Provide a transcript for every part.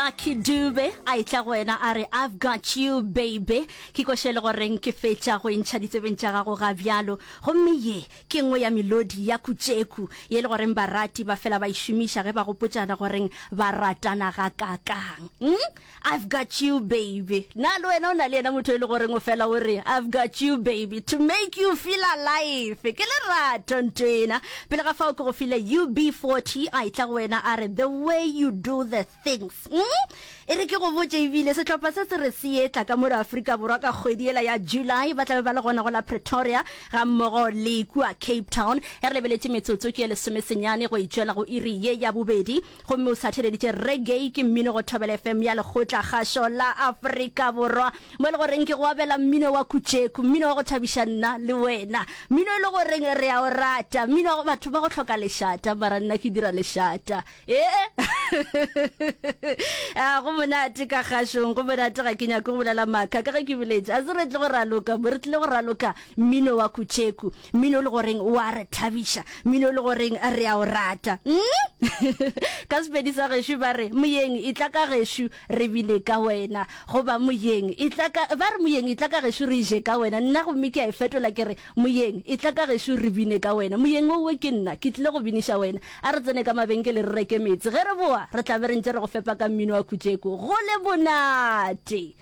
lucky dube a etla go wena a re i've got you baby ke koše le goreng ke fetša go entšha ditsebeng tša gago ga bjalo gomme ye ke nngwe ya melodi ya kutšeku ye le goreng barati ba fela ba e šomiša ge ba gopotšana goreng ba ratana ga kakang mm? i've got you baby na le wena o na le yena motho e le goreng o fela o re i've got you baby to make you feel alive ke lerato ntwena Pele ga fao ke go file UB40 a etla go wena a re, The way you do the things. Umm! E re ke go botše ebile, sehlopha se se re se etla ka mo re Afrika Borwa ka kgwedi yela ya July, ba tla be ba le gona go la Pretoria ga mmogo le kua Cape Town. E re lebeletše metsotso ke ye lesomesenyane go e tšwela go iri ye ya bobedi. Gomme o satheleditše reggae ke mmino go Thobela FM ya Lekgotla-kgašo la Afrika Borwa, mo e le goreng ke go abela mmino wa kutšeku, mmino wa go thabiša nna le wena, mmino e le goreng re a o rata, mmino wa go batho ba go hloka lešata, mara nna ke dira lešata. Ee! Ah, go monate ka kgašong, go monate, ga ke nyake go bolela maaka, ka ge ke boletše, a se re tle go raloka, mo re tlile go raloka mmino wa kutšeku. Mmino o le goreng o a re thabiša, mmino o le goreng re a o rata. Mm? ka Sepedi sa gešo ba re, Moyeng, e tla ka gešo, re bine ka wena. Goba, Moyeng, e tla ka, ba re, Moyeng, e tla ka gešo, re je ka wena. Nna gomme ke a e fetola ke re, Moyeng, e tla ka gešo, re bine ka wena. Moyeng owe ke nna, ke tlile go biniša wena. A re tsene ka mabenkele re reke meetse. Ge re boa, re tla be re ntše re go fepa ka mmino wa Kutšeko. Go le bonate!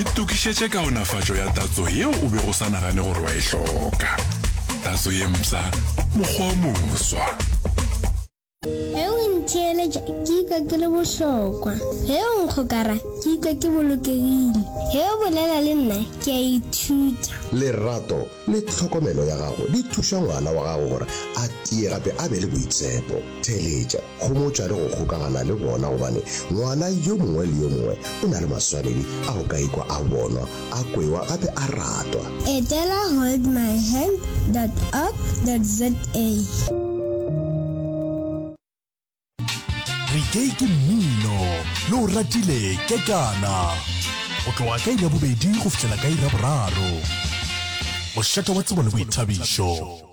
Itokišetše kaonafatšo ya tatso yeo o bego o sa nagane gore wa e hloka. Tatso ye mpsha, mokgwa o moswa. Ge o ntheeletša ke ikwa ke le bohlokwa, ge o nkgokara ke ikwa ke bolokegile, ge o bolela le nna ke a ithuta. Lerato le tlhokomelo ya gago di thuša ngwana wa gago gore a tie gape a be le boitshepo. Theeletša. Homotša le go kgokagana le bona gobane ngwana yo mongwe le yo mongwe o na le maswanedi a go ka ikwa a bonwa, a kwewa gape a ratwa. Etela holdmyhand dot org dot za. Reggae ke mmino yo o ratile kekana go tloga ka iri ya bobedi go fihlela ka iri ya boraro. Mošate wa tsebo le boithabišo.